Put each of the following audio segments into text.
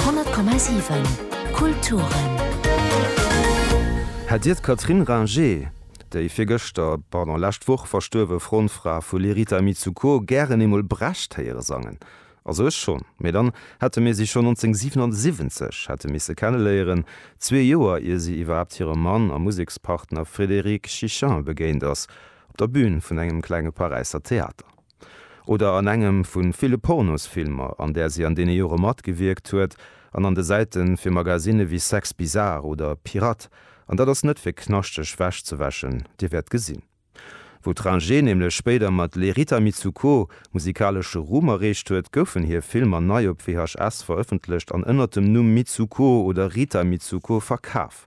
100,7 Kulturen. Hätt Dir d'Catherine Ringer, déi virgëschter, pardon, lescht Woch verstuerwe Frontfra vu Les Rita Mitsouko, gären eemol Brecht héiere sangen? Also ech schonn. Mee dann hätte mir si schonn 1977 hätte misse kenneléieren, zwee Joer ier si iwwerhaapt hirem Mann a Musekspartner Frédéric Chichin begéint ass, op der Bün vun engem klenge Paräisser Theater. oder an engem vu ville Pornosfilmer, an där si an deene Jore matgewierkt huet, an an de Säite fir Magasinne wéi Sex Bizarre oder Pirate, an dat ass net fir knaschteg Wäsch ze wäschen, Dir wäert gesinn, wou d'Ringe nämlech spéider mat Les Rita Mitsouko musikalesche Ruhm erreecht huet, goufen hir Filmer nei op VHS verëffentlecht an ënnert dem Numm Mitsouko oder Rita Mitsouko verkaf.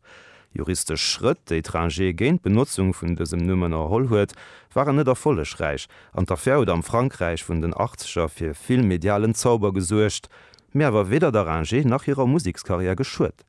Juristesch Schrëtt, déi d'Rangé géint d'Benotzung vun dësem Numm ënnerholl huet, waren net erfollegräich an d'Affär huet am Frankräich vun den Achtzeger fir vill medialen Zauber gesuergt, mee awer weder der Rangé nach hirer Musekskarriär geschuet.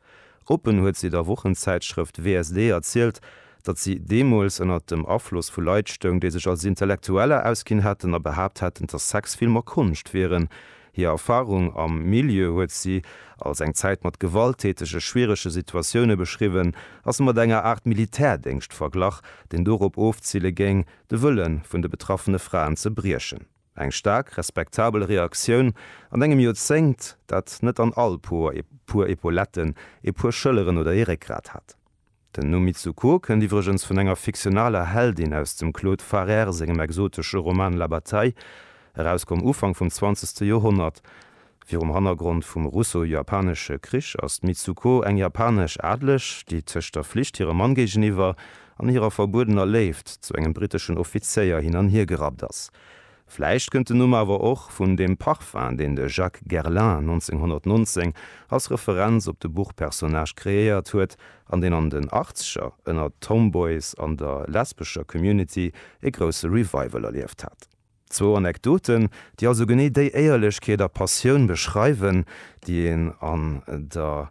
Oppen huet si der Wochenzäitschrëft WSD erzielt, datt si deemools ënner dem Afloss vu Leit stoung, déi sech als Intellektueller ausginn hätten a behaapt hätten, datt Sexfilmer Konscht wieren, Hir Erfarung am Milieu huet si als eng Zäit mat gewalttätege, schwierege Situatioune beschriwwen a se mat enger Aart Militärdéngscht verglach, deen dorop ofzile géing, de Wëlle vun de betraffene Fraen ze briechen. Eng staark respektabel Reaktioun an engem Joerzéngt, dat net an all Por e puer Epauletten, e puer Schëlleren oder ee Réckgrat hat. Den Numm Mitsuko kënnt iwwregens vun enger fiktionaler Heldin aus dem Claude Farrère sengem exotesche Roman La Bataille, erauskomm Ufank vum zwanzegste Joerhonnert. Virum Hannergrond vum Russo-Japanesche Krich ass d'Mitsuko eng japanesch Adeleg, déi tëscht der Flicht hirem Mann géigeniwwer an hirer verbuedener Léift zu engem briteschen Offizéier hin an hier gerappt ass. Vläicht kënnt den Numm awer och vun dem Parfum, deen de Jacques Guerlain 1919 als Referenz op de Buchpersonnage kreéiert huet an deen an den Achtzeger ënner d'Tomboys an der lesbescher Community e grousse Revival erlieft hat. Zwou Anekdoten, déi also genee déi Éierlechkeet a Passioun beschreiwen, déi een an der